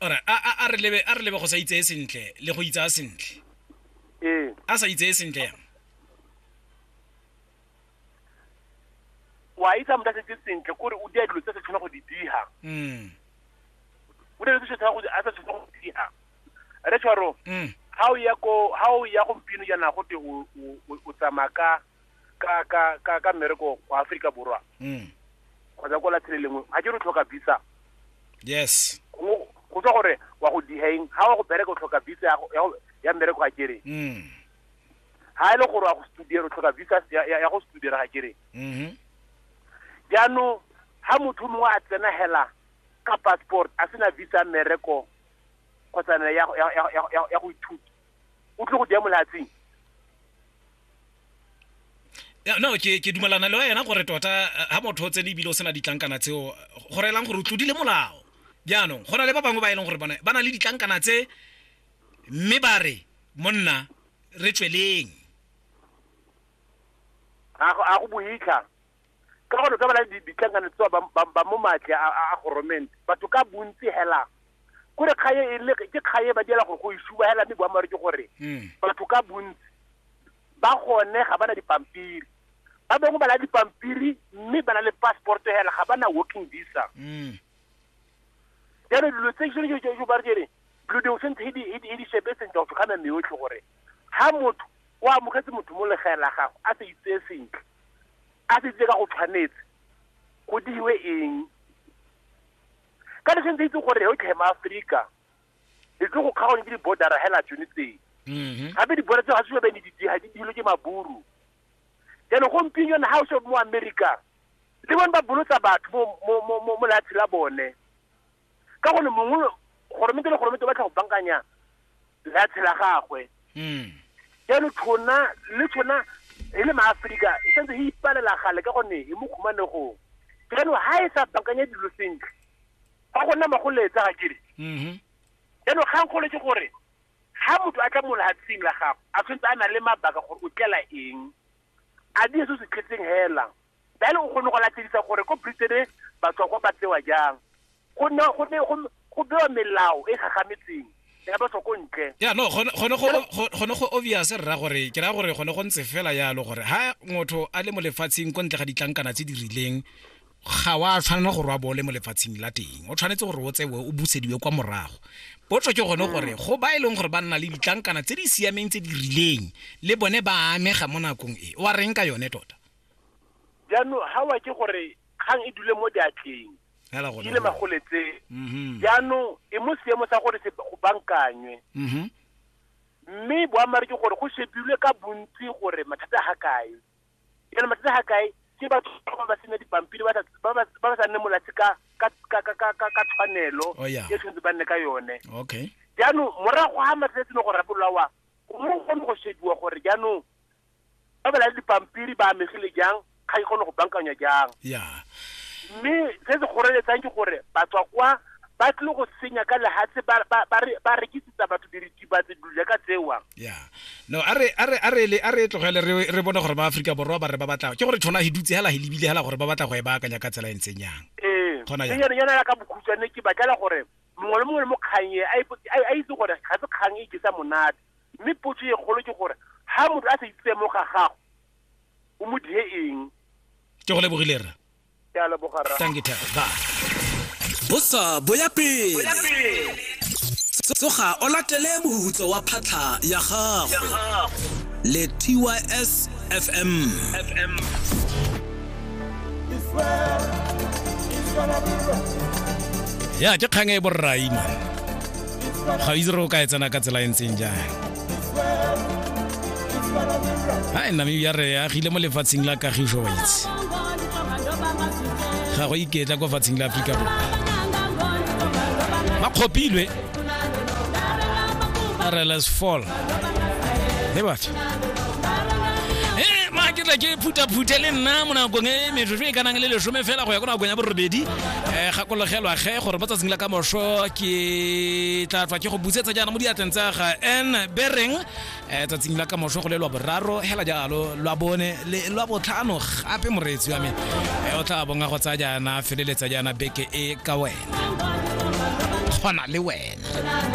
ora a re lebe a re lebe go sa itseye sentle le go itsa sentle ee a sa itseye sentle yang wa itsa motho a setse sentle kore o dia dilo tse se tshwana go di diha mm o ne se tshwana go a sa tshwana go diha re tshwaro mm ha o ya go gompieno jaana go te o tsamaya ka ka ka ka ka mmereko kwa Africa borwa mm. kgotsa ko latshe le lengwe ga ke re tlhoka visa yes go tswa gore wa go dihaeng ga wa go bereka o tlhoka visa ya go- ya go- ya mmereko ga kere mm. ga e le gore wa go studere o tlhoka visa ya- ya ya go studere ga kere Mhm. jaanong ga motho o mongwe a tsena hela ka passport a sena visa ya mmereko kgotsa ne ya go- ya- ya- ya- ya- ya go ithuta o tle go dia molatsing Ya, no ke ke dumalana le wena gore tota eh, ha motho o tsene ebile o sena ditlankana tseo go reelang gore o tlodile molao jaanong go na le ba bangwe ba e leng gore bone ba na le ditlankana tse mme ba re monna re tsweleng a go- a go boitlha ka gore ka bana ditlankana tsa ba ba- ba mo matle a a- a goromente batho ka bontsi hela kore kgaye e le ke kgaye ba diela gore go isuba hela mme boammaaruri ke gore Mm. batho ka bontsi ba gone ga ba na dipampiri ba bangwe ba na le dipampiri mme ba na le passport hela ga ba na working visa Mm. jalo dilo tse tshwane jo- jo- jo ba re kere dilo dingwe sentse e di- e di- e di shebe sentle go tlhokana mme yotlhe gore ha motho o amogetse motho mo legae la gago a sa itseye sentle a tsetse ka go tshwanetse go diwe eng ka le sentse itse gore o tlhe maaforika e tlo go kgaone ke di-bordera hela tsone tsee mhm. gape di-border tseo ga se bene didiga di dilo ke maburu jaanong gompieno na ga o se mo america le bone ba bolotsa batho mo leatshe la bone ka gonne mongwe goromente le goromente o batla go bankanya leatshe la gagwe mm. jalo tshona le tshona e le maaforika e santse e ipalela gale ka gonne e mo khumanegong jaanong ga e sa bankanya dilo sentle ba go nna magoletsa ga kere mm-hmm. jaanong kgang kgolo ke gore ga motho a tla mo lehatsheng la gago a tshwanetse a na le mabaka gore o tlela eng a di se se tletseng hela Jalo o kgone go latedisa gore ko Britain batswakwa ba tsewa jang. Go ne go ne go go bewa melao e gagametseng ya batswako ntle. Yeah no gone gone go gone go obvious rra gore ke ra gore gone go ntse fela yalo gore ha motho a le mo lefatsheng ko ntle ga ditlankana tse di rileng ga wa tshwanela gore wa bole mo lefatsheng la teng o tshwanetse gore o tsewe o busediwe kwa morago potso ke gone gore go ba e leng gore ba nna le ditlankana tse di siameng tse di rileng le bone ba amega mo nakong e o a reng ka yone tota jaanong ga wa ke gore kgang e dule mo diatleng di le magoletseng mhm. jaanong e mo seemo sa gore se go bankanywe mhm. mme boamare ke gore go shebilwe ka bontsi gore mathata ga kae yana mathata ga kae ke batho ba ba sena dipampiri ba ba sa nne molatsi ka tshwanelo oh, e tshwanetse ba nne ka yone jaanong morago ga mathata a tsene go rapololawa go kgone go shebiwa gore jaanong ba bela dipampiri ba amegile jang ga e kgone go bankanywa jang ya mme se se kgoreletsang ke gore batswa kwa ba tlile go senya ka lehatshe ba- ba- ba re- ba rekisetsa batho diritibatse dilo jaaka tsewa ya no a re a re a re le a re tlogele re re bone gore ba Afrika borwa ba re ba batla ke gore tshwana he dutse hela he lebile hela gore ba batla go e baakanya ka tsela e ntseng yang ee Kgona jang? yana yana ya ka bokhutshwane ke batlela gore mongwe le mongwe le mo kgang e a ipo- a- a itse gore ga se kgang e ikisa monate mme potso e kgolo ke gore ha motho a sa itse mo ga gago o mo die eng ke go lebogile rra ke a leboga rra thank you tag ba bosa boya pele tsoga o latele mohutso wa phatlha ya gago le tys fm fm ya ke kgang e borraima ga itse re o ka e tsena ka tsela e ntseng jang hai namibia re agile mo lefatsheng la kagiso wa itse ga go iketla kwa fatsheng la aforika borwa ba kgopilwe rls fall e batho ke tla ke phuthaphuthe le nna mo nakong e metsotso e kanang le lesome fela go ya ko nakong ya borobedi eh gakologelwa ge gore mo tsatsing la ka moso ke tla tswa ke go busetsa jaana mo diatleng tsa ga n bereng eh tsatsing la ka moso go le lwa boraro hela jalo lwa bone le lwa botlhano gape moreetsi wa me eh o tla bonga go tsaya jaana feleletsa jaana beke e ka wena kgona le wena